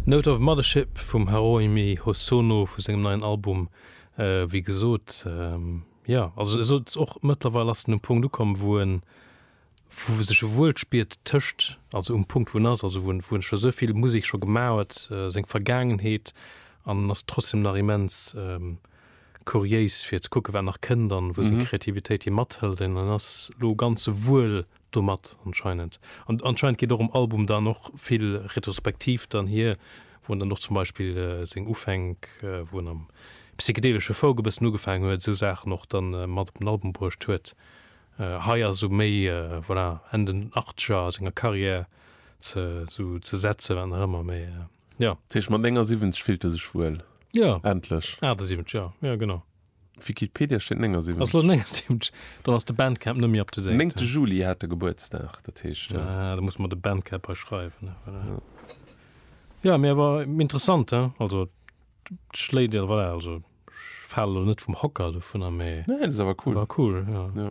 Note of Mothership vum Haruomi Hosono vu sengem neien Album. Wéi gesot, jo, also e sollt och, mëttlerweil ass en um Punkt ukomm, wou e sech wuel spiert tëscht, also um Punkt wou en ass, also wou en scho esou vill Musek scho gemaach huet, seng Vergaangenheet, an en ass trotzdem nach immens kuriéis fir ze kucken, wat nach kënnt an wou seng Kreativitéit hie mathëlt. An en ass elo ganz wuel Domat anscheinend. An anscheinend geet och um Album dann och vill retrospektiv dann hier, wou en dann och zum Beispill seng Ufänk, wou en am psychedelesche Folk e bëssen ugefaangen huet, esou Saachen och dann mat op den Album bruecht huet. Hei ass esou méi, voilà, Enn den Achtzeger a senger Carrière ze esou ze setzen, wat nach ëmmer, mee jo. Dat heescht, mat 79 fillt e sech wuel. Jo. Endlech. 78, jo, jo, genau. D'Wikipedia steet 79. Dann ass de Bandcamp net méi up to date. Néngte Juli hat e Gebuertsdag, dat heescht. Ah, da muss mer de Bandcamp hei schreiwen. Jo, mee awer interessant, he? Also, et schléit, voilà, also ech fale lo net vum Hocker dovunner, mee. Nee, dat ass awer cool. War cool, jo. Jo.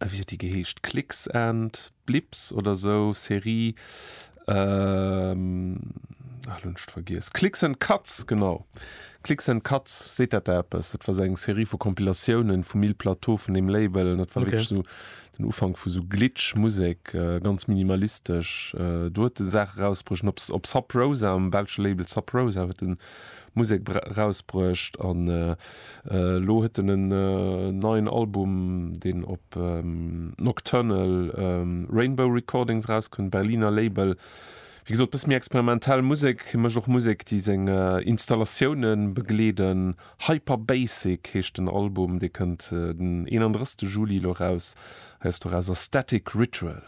äh, wéi huet déi geheescht, Clicks and Blips oder sou, Serie, ähm, ach, lo hunn ech et vergiess, Clicks and Cuts, genau, Clicks and Cuts, seet dat der eppes? Dat war sou eng Serie vu Compilatiounen vum Mille Plateau, vun deem Label, an dat war wierklech sou den Ufank vu sou Glitch-Musek, ganz minimalistesch. Do huet en Saache rausbruecht, op Sub Rosa, um belsche Label Sub Rosa, huet en Musek rausbruecht an elo huet en en neien Album, deen op Nocturnal Rainbow Recordings rauskënnt, Berliner Label. Wéi gesot, e bësse méi experimentell Musek. Hie mécht och Musek, déi seng Installatioune begleeden. Hyper Basic heescht den Album, dee kënnt den 31 Juli elo raus. Hei ass doraus a Static Ritual.